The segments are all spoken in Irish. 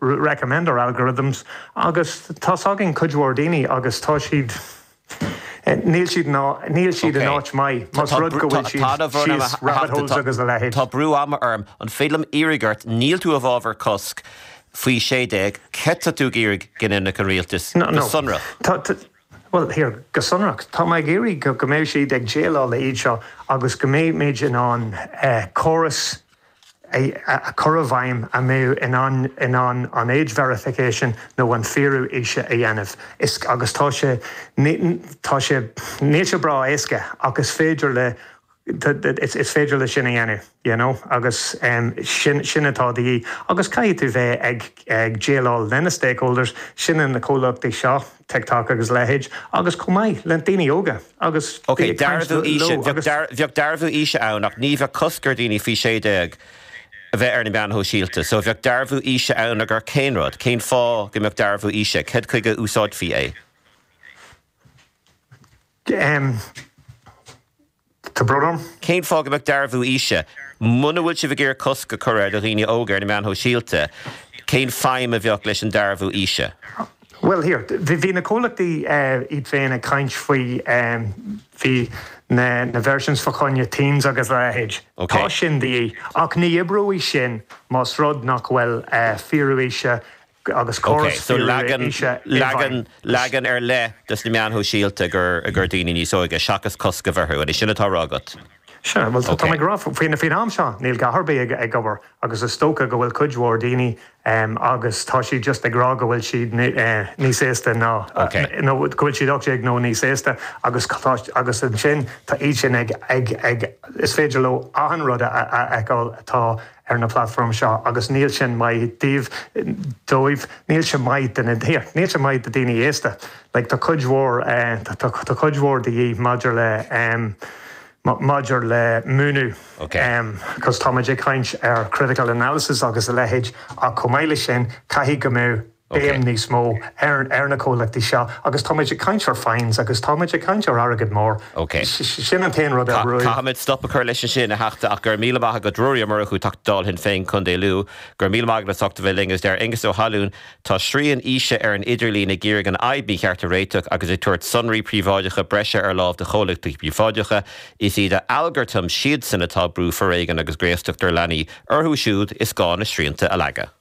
recommend our algorithms agus tá's againn cuid mhór daoine agus tá siad níl siad á níl siad in áit maith más rud go bhfuil siad síos rabbit holes agus a leithéid. Tá brú ama orm, an féidir liom iarraidh ort, níl tú i bhfabhar cosc faoi 16, céard atá tú ag iarraidh go ndéanfadh an rialtas go sonrach? Bhuel, here go sonrach, tá mé ag iarraidh go go mbeidh siad ag déileáil le iad seo agus go mbeidh muid in ann córas, a chur i bhfeidhm a mbeadh in ann in ann an age verification nó an fíorú aoise a dhéanamh. Is agus tá sé tá sé níl sé breá éasca ach is féidir leis is féidir le sin a dhéanamh you know agus sin sin atá de dhíth agus caithfidh tú bheith ag ag déileáil lena stakeholders sin an na comhlachtaí seo TikTok agus a leithéid, agus chomh maith le daoine óga agus bhí ag caint leo agus. Bheadh dearbhú aoise ann ach ní bheadh cosc ar dhaoine faoi 16 a bheith ar na meáin shóisialta. So bheadh dearbhú aoise ann i gcomhair cén rud? Cén fáth go mbeadh dearbhú aoise? Cad chuige a úsáidfí é? Tá brón orm. Cén fáth go mbeadh dearbhú aoise? Muna bhfuil sibh ag iarraidh cosc a chur ar dhaoine óga ar na meáin shóisialta, cén feidhm a bheadh leis an dearbhú aoise? Bhuel, here, bhí na comhlachtaí iad féin ag caint faoi, bhí na versions fa choinne Teens agus a leithéid. Tá sin de dhíth, ach ní oibreoidh sin más rud nach bhfuil fíorú aoise agus córas fíoraithe aoise i bhfeidhm. Leagan ar leith dos na meáin shóisialta i gcomhair daoine níos óige, seachas cosc a bheith orthu, an é sin atá á rá agat? Sea, bhuel tá mé ag rá faoin am seo níl a dhath ar bith ag obair agus is dócha go bhfuil cuid mhór daoine agus tá siad just ag rá go bhfuil siad níos aosta ná nó go bhfuil siad 18 nó níos aosta agus agus ansin tá iad sin ag is féidir leo achan rud a fheiceáil atá ar na platform seo agus níl sin maith díobh, dóibh, níl sé maith do na, here, níl sé maith do daoine aosta. Like tá cuid mhór, tá cuid mhór de dhíth maidir le, maidir le múineadh cos táimid ag caint ar critical analysis agus a leithéid ach chomh maith leis sin caithfidh go mbeadh, béim níos mó ar na comhlachtaí seo agus táimid ag caint ar fines agus táimid ag caint ar airgead mór. Sin an t-aon rud ar. Caithfimid stop a chur leis ansin, a Theachta, ach go raibh míle maith agat. Ruairí Ó Murchú, Teachta Dála, Shinn Féin, Contae Lú. Go raibh míle maith agat as ucht a bheith linn. Agus deir Aengus Ó hAilliún, Tá srian aoise ar an idirlíon ag iarraidh an fhadhb mícheart a réiteach agus ag tabhairt sonraí príobháideacha breise ar láimh do chomhlachtaí príobháideacha. Is iad a algartaim siadsan atá ag brú foréigean agus graostacht ar leanaí. Orthu siúd is gá na srianta a leagadh.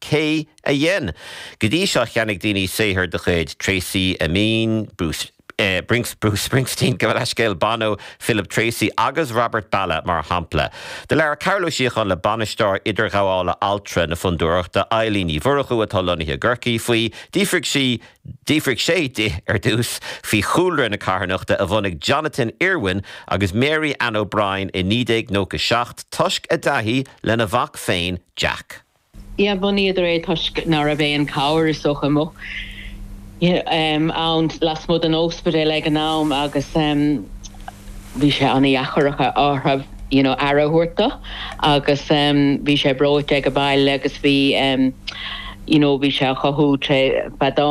Cé a dhein? Go dtí seo cheannaigh daoine saothar de chuid Tracey Emin, Bruce Bruce Springsteen, gabh mo leithscéal, Bono, Philip Treacy agus Robert Ballagh mar shampla. Do labhair Cearbhall Ó Síocháin le Bainisteoir Idirghabhála Altra na Fondúireachta, Eilín Ní Mhurchú atá lonnaithe i gCorcaigh, faoi, d'fhiafraigh sí d'fhiafraigh sé di ar dtús faoi chúlra na carthanachta a bhunaigh Jonathan Irwin agus Mary Ann O'Brien i 1997 toisc a dtaithí lena mhac féin, Jack. Yeah bhunaíodar é toisc ná raibh aon chabhair, is dócha, amuigh ann lasmuigh den óspidéal ag an am agus bhí sé ana dheacair orthu you know aire a thabhairt dó agus bhí sé breoite aige baile agus bhí you know bhí sé á chothú tré feadán.